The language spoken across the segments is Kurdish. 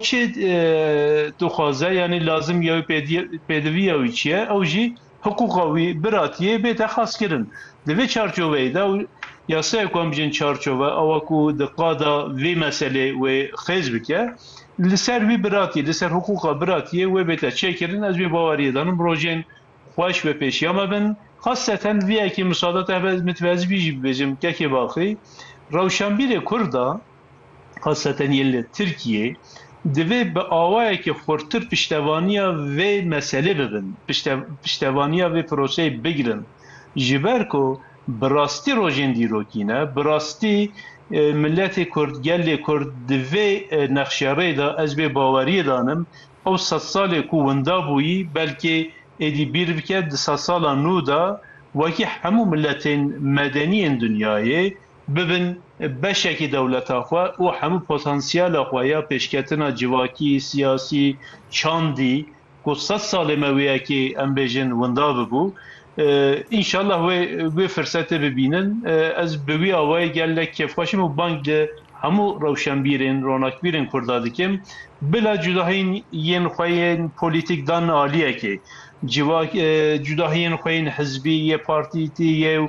Çi dixwaze yanî lazim ye wî pêdiviya wî çi ye ew jî hiqûqa wî biratiyê bête xaskirin. Di vê çarçoveyê de yasayek wan bijîn çarçove awa ku di qada vê meselê wê xêz bike li ser wî biratiyê li ser hiqûqa biratiyê wê bête çêkirin ez vê baweriyê danim rojên xweş bi pêşiya me bin xaseten vê yekê misadateke min divê ez vî jî bibêjim Kekê Baxî rewşenbîrê kurd a Xaseten yên li Tirkiyê divê bi awayekî xurtir piştevaniya vê meselê bibin, piştevaniya vê proseyê bigirin. Ji ber ku bi rastî rojên dîrokî ne, bi rastî miletê Kurd, gelê Kurd di vê nexşerê de ez vê baweriyê danim ew sed salê ku winda bûyî belkê êdî bîr bike di sed sala nû de wekî hemû miletên medenî yên dinyayê bibin beşekî dewleta xwe û hemû potansiyela xwe ya pêşketina civakî, siyasî, çandî ku sed salê me wê yekê em bêjin winda bibû. Înşallah wê wê firsetê bibînin. Ez bi wî awayî gelek kêfxweş im û bang li hemû rewşenbîrên, ronakbîrên Kurda dikim. Bila cudahiyên yên xwe yên polîtîk dan aliyekê. Civak cudahiyên xwe yên hizbî yê partîtî yê û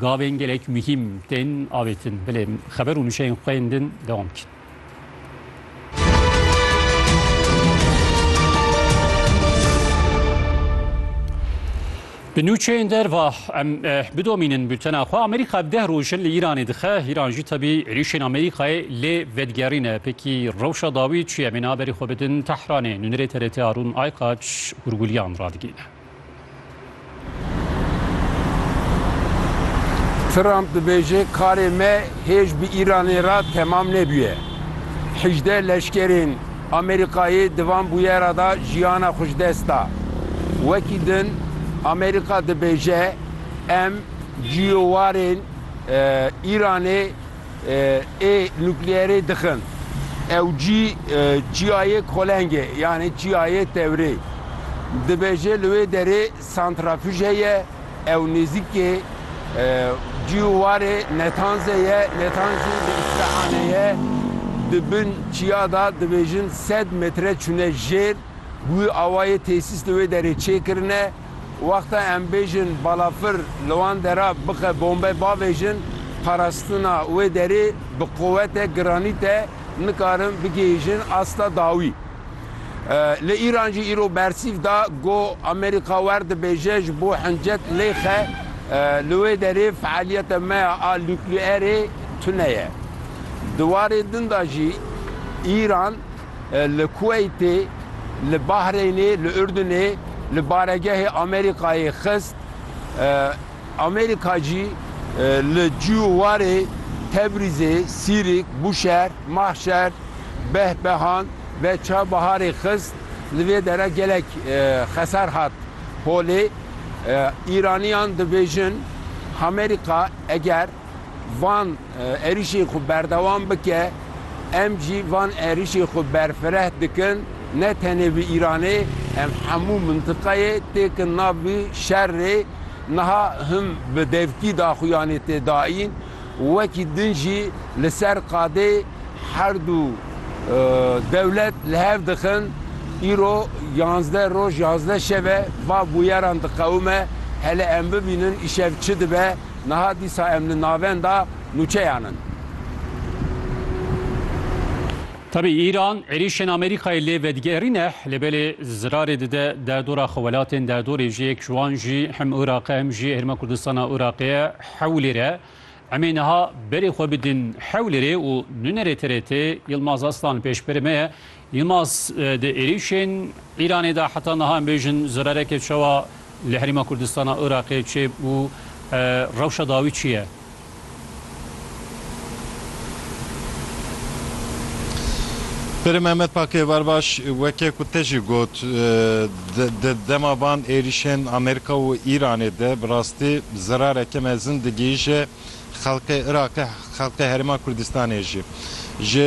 Gavên gelek muhîm tên avêtin. Bilê xeber û nûşeyên xwe yên din dewam bikin. Bi nûçeyên derva em eh, bidomînin bültena xwe. Amerîka bi deh rojin li Îranê dixe. Îran jî tebî êrîşên Amerîkayê lê vedigerîne. Pekî rewşa dawî çi ye? Bêne aberî xwe bidin Tehranê. Nûnerê TRT Arûn Aykaç hûrgulîyan radigihîne. Trump dibêje karê me hêj bi Îranê re temam nebûye. Hejdeh leşkerên Amerîkayê di van bûyera de jiyana xwe ji dest da. Wekî din Amerîka dibêje em cîyowarên Îranê Ê nukleyerê dixin. Ew cî çiyayê kolengê yanê çiyayê tewrê dibêje. Li wê derê santrafij heye. Ew nêzîkê cî û warê Netanzê ye. Netanzî li Îsfehanê ye. Di bin çiya de dibêjin sed metre çûne jêr. Bi wî awayê tesîs li wê derê çêkirine. Wexta em bêjin balafir li wan dera bixe bombe bavêjin, parastina wê derê bi quwete giranît e, nikarin bigihîjin asta dawî. Li Îran jî îro bersîv da ku Amerîka wer dibêje ji bo hincet lêxe li wê derê fealiyeta me ya a nukleerê tune ye. Di warê din da jî Îran, Li Kuweytê, li Bahreynê, li Urdunê li baregehê Amerîkayê xist. Amerîka jî li cû û warê Tebrîzê, Sîrîk, Bûşehir, Mahşer, Behbehan ve Çavbiharê xist. Li vê dere gelek xesar hat holê. Îraniyan dibêjin Amerîka eger. van êrîşên xwe berdewam bike, em jî van êrîşên xwe berfireh dikin, ne tenê bi Îranê em hemû mintiqeyê têkin nav vî şerrê, niha him bi devkî daxuyanê tê dayîn, wekî din jî li ser qadê herdû dewlet li hev dixin, îro yanzdeh roj yanzdeh şev e va bûyeran diqewime, hele em bibînin îşev çi dibe. Niha dîsa em li navenda nûçeyan in. Tevî Îran êrîşên Amerîkayê lê vedigerîne, lê belê zirarê dide derdora xwe welatên derdorê jî yek ji wan jî hem Iraq e hem jî Herêma Kurdistana Iraqê ye Hewlêr e. Emê niha berê xwe bidin Hewlêrê û nûnerê TRT Yilmaz Aslan li pêşberê me ye. Yilmaz, Di êrîşên Îranê de heta niha em bêjin zerereke çawa li Herêma Kurdistana Iraqê çêbû, rewşa dawî çi ye? Pirim Mehmet Pakê, Bar baş, weke ku te jî got, di dema van êrîşên Amerîka û Îranê de bi rastî zerareke mezin digihîje xelkê Iraqê, xelkê Herêma Kurdistanê jî.